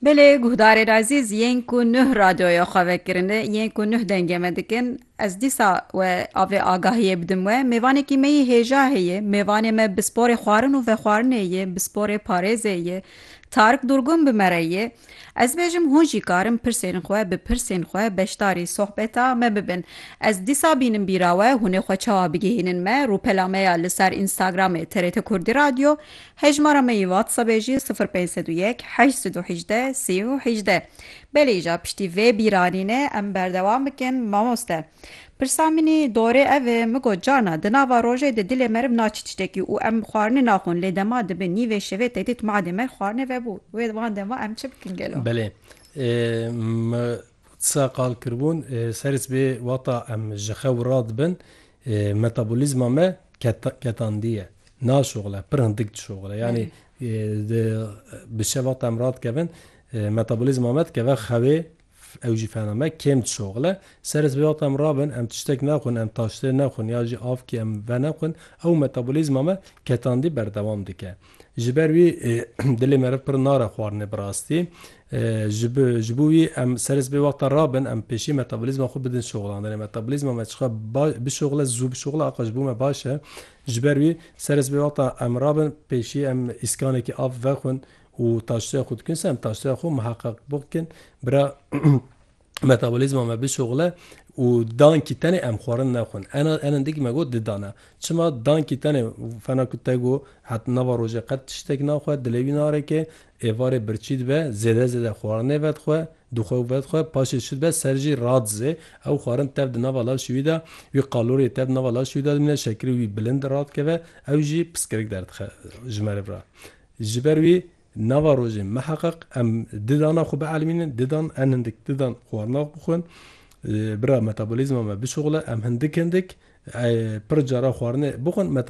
Belê guhdarê razîz yên ku nuh radyoya xwe vekirine yên ku nuh dengê me dikin ez dîsa we avê agahiyê bidim we mêvanekî me yê hêja heye mêvanê me bi sporê xwarin û vexwarinê yê bi sporê parêzê yê Tarik Durgun bi me re yê ez bêjim hûn jî karin pirsên xwe bi pirsên xwe beşdarî sohbeta me bibin ez dîsa bînim bîra we hûnê xwe çawa bigihînin me rûpela me ya li ser Instagramê TRT Kurdî Radyo Hejmara me yê WhatsAppê jî sifir pênc sed û yek heşt sed û hejdeh sî û hejdeh. Belê îcar piştî vê bîranînê em berdewam bikin mamoste. Pirsa min î dorê ev e, min got carna di nava rojê de dilê me rib naçî tiştekî û em xwarinê naxwin lê dema dibe nîvê şevê tedît madê me xwarinê vebû wê van dema em çi bikin gelo? Belê. Min Qisa qal kiribûn serîs bê wata em ji xew ra dibin metabolîzma me ketandiye naşoxile pir hindik dişoxile yanî bi şev wata em radikevin metabolîzma me dikeve xewê ew jî fena me kêm dişoxile serîs bê wata em rabin em tiştek nexwin em taştê nexwin ya jî avkê em veneqwin ew metabolîzma me ketandî berdewam dike. Ji ber wî dilê meriv pir nare xwarinê bi rastî. Ji ji bo wî em serê sibê wexta rabin em pêşî metabolîzma xwe bidin şoxlandinê. Metabolîzma me çiqas baş bişoxile zû bişoxile axa ji bo me baş e. Ji ber wî serê sibê wexta em rabin pêşî em îskanekî av vexwin û taştoya xwe dikin ser em taştoya xwe miheqeq bikin bira Metabolîzma me bişoxile û dankî tenê em xwarin nexwin. Enendik me got didane. Çima? Dankî tenê fena ku te got heta nava rojê qet tiştek naxwe, dilê wî narêke, êvarê birçî dibe, zêde zêde xwarinê vedixwe, dixwe û vedixwe, paşê şû dibe ser jî radizê, ew xwarin tev di nava laşê wî de, wî qaloriyê tev di nava laşê wî de dimîne, şekirê wî bilind radikeve, ew jî piskirik derdixe ji merivre. Ji ber wî Nava rojê miheqeq em di dana xwe bielmînin, didan en hindik didan xwarina bixwin, bira metabolîzma me bişuxile, em hindik hindik pir cara xwarinê bixwin, meta.